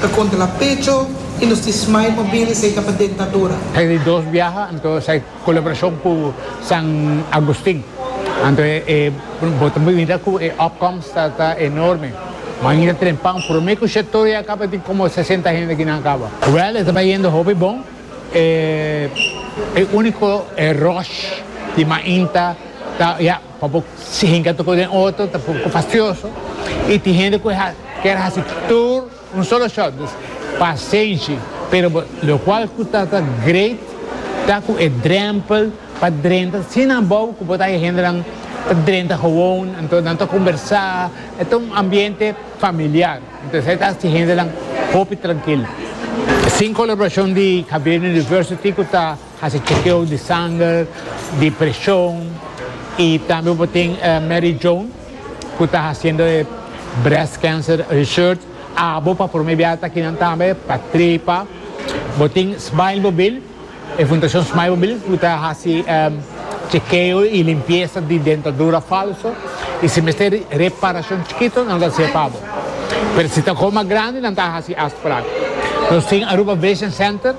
Ta kontra la pecho y nos tin smile mobil y esey ta pa dentadura. Esey di dos biaha anto esey colaboracion cu San Agustin anto e bo ta mira cu e opkomst ta enorme. Mangi ta trempa un prome cu she toro ya caba tin como sesenta hende aki nan caba. Wel e ta bayendo hopi bon e unico e rush di mainta ta ya. Pa bo si hinca toco den otro ta poco fastioso y tin hende cu a kier haci tur un solo shot, dus pasenshi, pero bo locual cu ta ta great ta cu e drempel pa drenta sin abou cu bo ta haya hendenan ta drenta gewoon, enton nan ta combersa, e ta un ambiente familiar, enton esai ta haci hendenan hopi trankil. Sin colaboracion di Javier University cu ta. Hasi chekeo di sanger, di preshon i tambe bo tin Mary Joan ku ta hasiendo e Breast Cancer Research abo pa prome biaha ta kinan tambe pa trepa. Bo tin Smilemobil, e Fundashon Smilemobil ku ta hasi chekeo i limpiesa di dentadura falso i si mester reparashon chikito nan lo ta hasié pa bo. Pero si ta kos mas grandi nan ta hasi asta paran. Nos tin Aruba Vision Center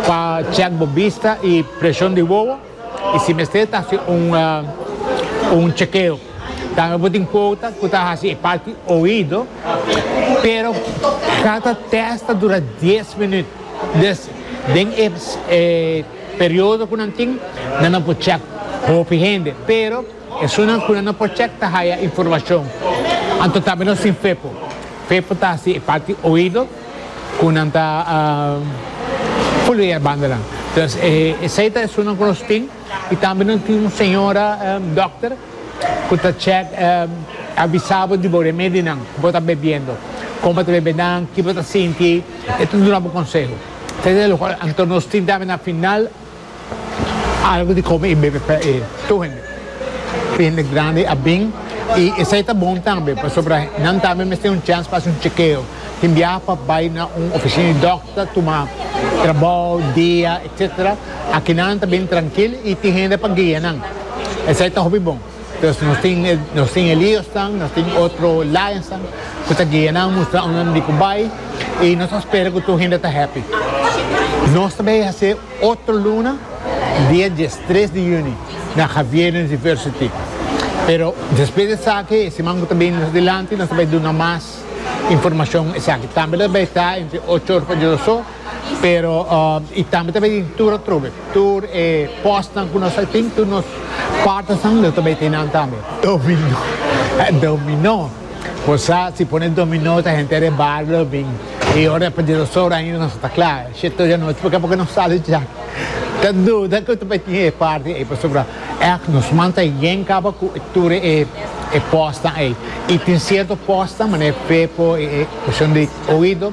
Pa check bo bista y presion di wowo y si mester ta haci un chekeo. Tambe bo tin cuota cu ta haci e parti oido pero cada test ta dura dies minuut dus den e periodo cu nan tin nan a por check hopi hende pero esunnan cu nan no por check ta haya informacion. Anto tambe nos tin fepo. Fepo ta haci e parti oido. cu nan ta foluea e bandanan. Entonces esey ta e estunan cu nos tin y tambe nos tin un señora dokter cu ta check avisa bo di bo remedi nan cu bo ta bebiendo, con bo ta bebe nan, ki bo ta sinti, e ta duna bo conseho. Esey ta e locual. Anto nos tin tambe na final. Algu di kome i bebe pa e tur hende. Tur hende grandi a bin i esei ta bon tambe pasobra nan tambe mester un chèns pa hasi un chekeo. Tin biaha pa bai na un ofisina di dòkter, tuma trabou, dia, etcetera. Aki nan ta bin trankil i tin hende pa guia nan. Esei ta hopi bon. Pues nos tin e nos tin e liosnan, nos tin otro lionsnan cu ta guia nan mustra unda nan di cu bay y nos ta spera cu tur hende ta happy. Nos ta bay hacer otro luna dia diestres di juni na Javier University. Pero despues di esaki e siman cu ta bini mas dilanti nos ta bay duna mas informacion esaki. Tambe lo ta bay ta entre ocho ora pa dies ora so. Pero y tambe ta bay tin tur atrobe, tur e postnan cu nos a tin, tur nos partnersnan lo ta bay tin nan tambe. Dominó, eh dominó, bo sa si pone dominó ta henter e bario lo bin y ora pa di dos ora ainda nos a ta cla, shit hoy anochi porque porque no sali dja, ta duda cu ta bay tin e parti ey pasobra ech nos man ta yen caba cu tur e e postnan ey y tin cierto postnan mane Pepo y e cushon di oido.